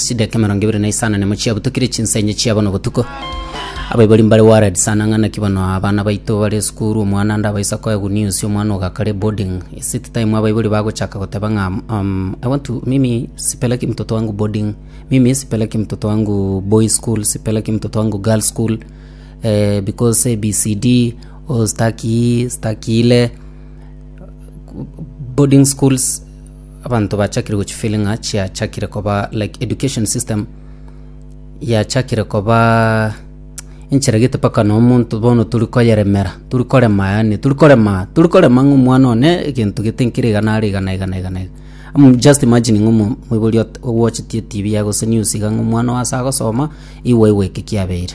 chideka emerongo ebere na isano nemo chiabutukire chinsa enye chia bono botuko abaibori mbare worried sana ng'a naki bono abana baito bare esukuru omwana ande abaisa koe good news omwana ogo akare boarding is it time abaibori bagochaka goteba ng'a um, i want to mimi sipeleki mtoto wangu boarding mimi sipeleki mtoto wangu boy school sipeleki mtoto wangu girl school because ABCD, oh sitaki, sitakile, boarding schools abanto bachakire gochifeelinga chiachakire koba like education system yachakire koba enchera gete mpaka na omonto bono turi koyeremera turi korema yaani turi korema turi korema ng'a omwana one egento gete nkere iga nare iga na iga na iga na iga Am just imagining ng'a omo- omoibori ot- ogoachetie etv yaye gose news iga ng'a omwana oo ase agosoma igwa igwa eke kiabeire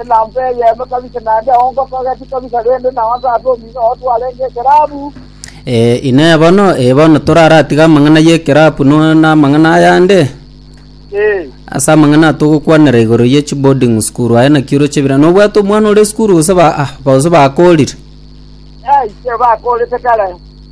Elampa eyemo kabisa, naende ongo togeti kabisa, rende nao ase ase omino oo twarenge ekerabu. Ee, Inee bono, ee bono toraratige amang'ana y'ekerabu no namang'ana ayande? Ee, Ase amang'ana aya togokwanera igoro ye chiboarding school aye naki oroche ebira. Nobwate omwana ore esukuru gose ba ah, gose bakorire? ee, inche bakorete kare.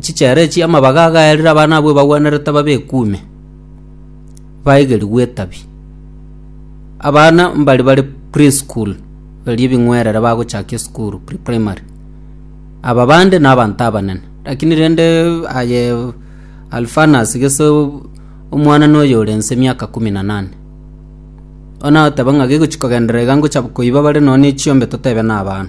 Chichera echi amabaga agayarire abana abwo ebagwenerete babe ekuume, baegerigwe etabi. Abana mbari bare pre-school, erio ebing'werere bagochaka esukuru, pre-primary. Aba bande nabanto abanene, lakini rende aye Alphanas gese omwanana oyo ore nse emiaka kumi na nane. Bono agoteba ng'a gegochi kogenderera iga ngocha koiba bare nonya ne chiombe totebe nabana.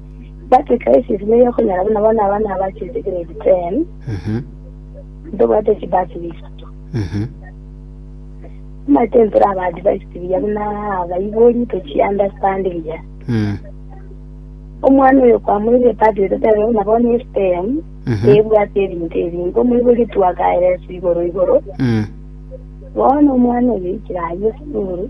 But crisis niyo okonyora buna bono abana abachete grade 10 Mhm. ntobwate chibasiri isato Mhm. omanyete ntore aba advised buya buna abaibori tochi understand buya Mm. omwana oyo kwamoire padi ototere buna bono estem Mhm. ebwate ebinto ebingi omoibori twakaeresu igoro igoro Mm. bono omwana oyo ikire aye esukuru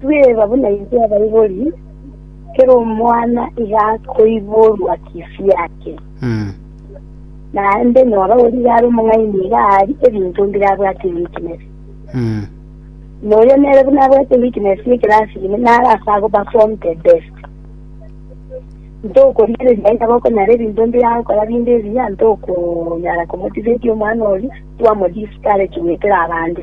Tweba buna intwe abaibori, kera omwana iga akoiborwa chifu yake, Mm. naende nyora origa are omong'aini iga aari ebinto mbire abwate weakness. Mm. Na oyo nere buna abwate weakness ekero asime naro ase ago perform the best. Ntokorigereria aye nabo okonyara ebinto mbire agokora binde ebiya, ntokonyara komotivate omwana oria, twamo discourage goetera abande.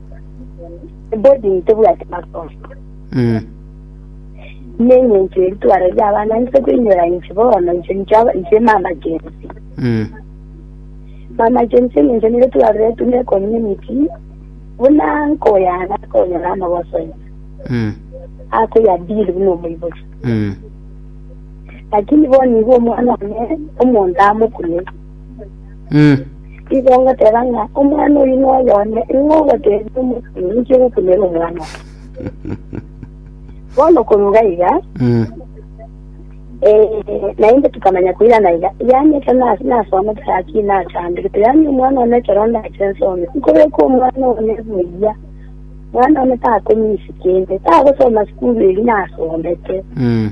boarding tebwati masomo Mm. nenye inche ebitwaro by'abana nse kwinyora inche bono inche inche aba- inche mama jensi Mm. mama jensi ninche nire twarire tune community buna nkoyana konyora amagosonya Mm. akoya bili buna omoibori Mm. lakini bono igo omwana one omonto amokune Mm. Igo ngoteba ng'a omwana oyi noyo one, ing'o ogotebia omokungu ninche gokunera omwana oye? Bono koruga iga, Mm. eh, naende tukamanya koirana iga, yaani ekero nas- nasoma tayaki nachambirete, yaani omwana one ekero ndache nsome, nkobeka omwana one buya, mwana one takonyisi kende, tagosoma sukuru eri nasomete. Mm.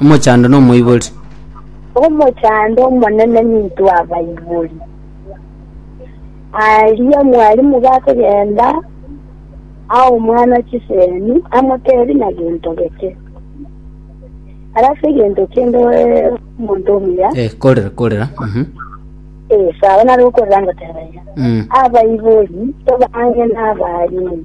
Omochando nomoibori. Omochando omonene nintwe abaibori. Aria mwalimu gakogenda aa omwana chisemi amotebi na gento geke. Arase gento kende omonto omuya. Eh, korera korera. Mhm. Eh, sawa nari okorera ngoteba iga. Mm. Abaibori tobange n'abalimu.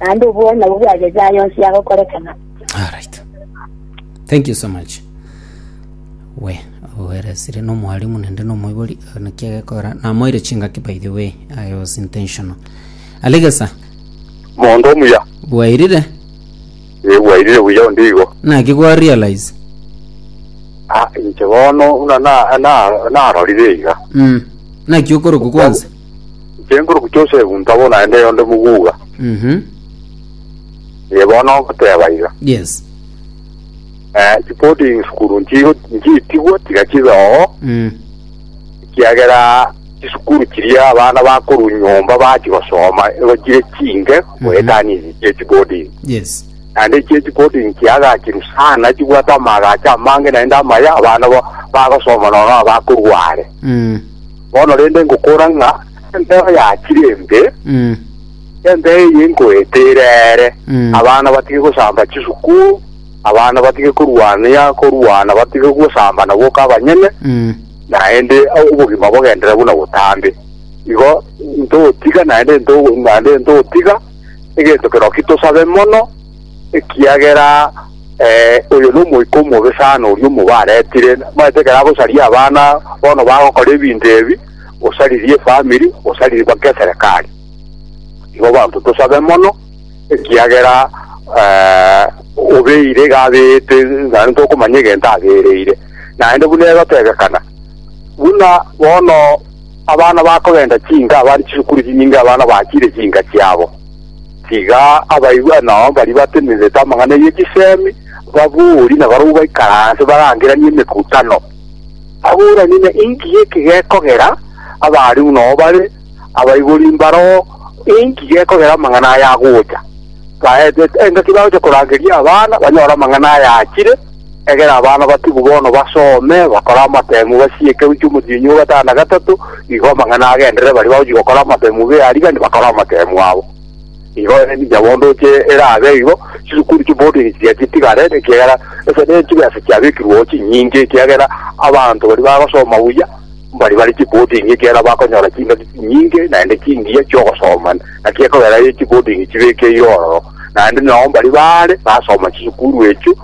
naende obwene nabwo bwagechire aya onsi agokorekana. Alright. Thank you so much. We, oweresire no mwalimu nende no moibori na kia gekora. Na moire chingaki by the way. I was intentional. Alegesa, mondo omuya bwairire egwairire buya onde igo na kigwa realize. Ah, inche bono buna na- na- narorire iga Mm. Na kiokoroku kwanza. Inche nkoroku Josefu ntabo naende oyonde moguga, Mhm. iye bono ogoteba iga. Yes. Eh, chiboding sukuru nchigo nchitigwe tiga chibe oo, Mm. ekiagera chisukuru chiria abana bakorwa nyomba bachi gosoma igo chire chinge goetania ichi chia chiboding. Yes. Naende ichie chiboding chiagachiru sana chibwate amaagacho amange naende amaya abana ba- bagosoma nono abakorwa are. Mm. Bono rende ngokora ng'a embeo yachire embe, Mm. embeo eye nkoete ere ere, Mm. abana batige gosamba chisuku, abana batige korwania korwana, batige gosambana boka abanyene, Mm. naende obogima bogendere buna botambe. Igo ntotiga naende nto- naende ntotiga egento kerokio tosabe mono, ekiagera eh, oyo nomoika omobe sana oria omobe aretire, nabaete ekero agosaria abana bono bagokora ebinto ebi, osaririe efamiri, osaririe mpaka eserekari. Igo banto tosabe mono, ekiagera eh, obeire iga abeete, naende tokomanya egento abereire, naende buna egotebekana buna bono abana bakogenda chinga abare chisukuru chinyinge abana bachire chinga chiabo Tiga abaibwa nao baria batenenerete amang'ana ye chisemi, ababori na barabwo baikaranse barangeranie emekutano, baboranie ng'a inki giki gekogera abaarimu nao bare abaibori mbaroo, inki gekogera amang'ana aya agocha. Baetete engaki bagocha korangeria abana banyore amang'ana aya achire. Egera abana batibu bono basome, bakore amatemu, basiye ekeru ki'omotienyi o gatano na gatato, igo amang'ana agenderere baria bagochia gokora amatemu b'earigani bakore amatemu abo. Igo ninche bondo oche erabe igo, chisukuru chi'boarding chiria chitigare, ekiagera ase ne chibesa chiabekirweo chinyinge, ekiagera abanto baria bagosoma buya mbaria bare chi'boarding ekiagera bakonyora chingaki chinyinge naende chingiya chi'ogosoma, naki ekogera chi'boarding chibekeirwe ororo, naende nao mbaria baare basoma chisukuru echio.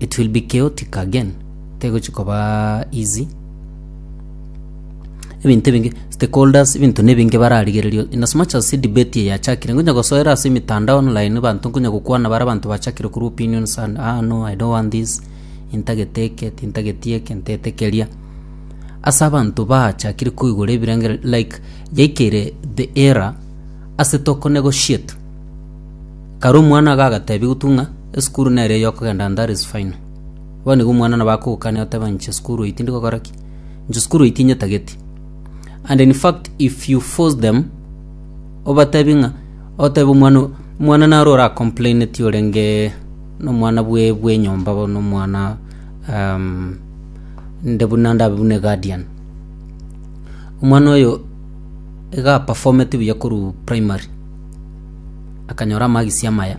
it will be chaotic again tegochi koba easy ebinto ebinge stakeholders ebinto nebinge bararigererio in as much as si debate eye yachakire ngonya gosoera ase emitandao online banto nkonya gokwana bare abanto bachakire korwa opinions and ah no i don't want this intagete eke tintageti eke ntete keria ase abanto baachakire koigora ebirengereri like yaikire the era ase toko negotiate Kare omwana iga agateebia gotung'a, Esukuru nere ey'okogenda Ndare is final. Bono igo omwana nabo akogokania oteba inche esukuru eye tindi gokora ki? Inche esukuru eye tinyetageti. And in fact if you force them obateebie ng'a otebe omwana o- omwana naro ora complaineti orenge na omwana bwe bwe enyomba bono omwana um, nde buna ndabe buna eguardian. Omwana oyo Iga aperformeti buya korwa primary, akanyora amagisi amaya.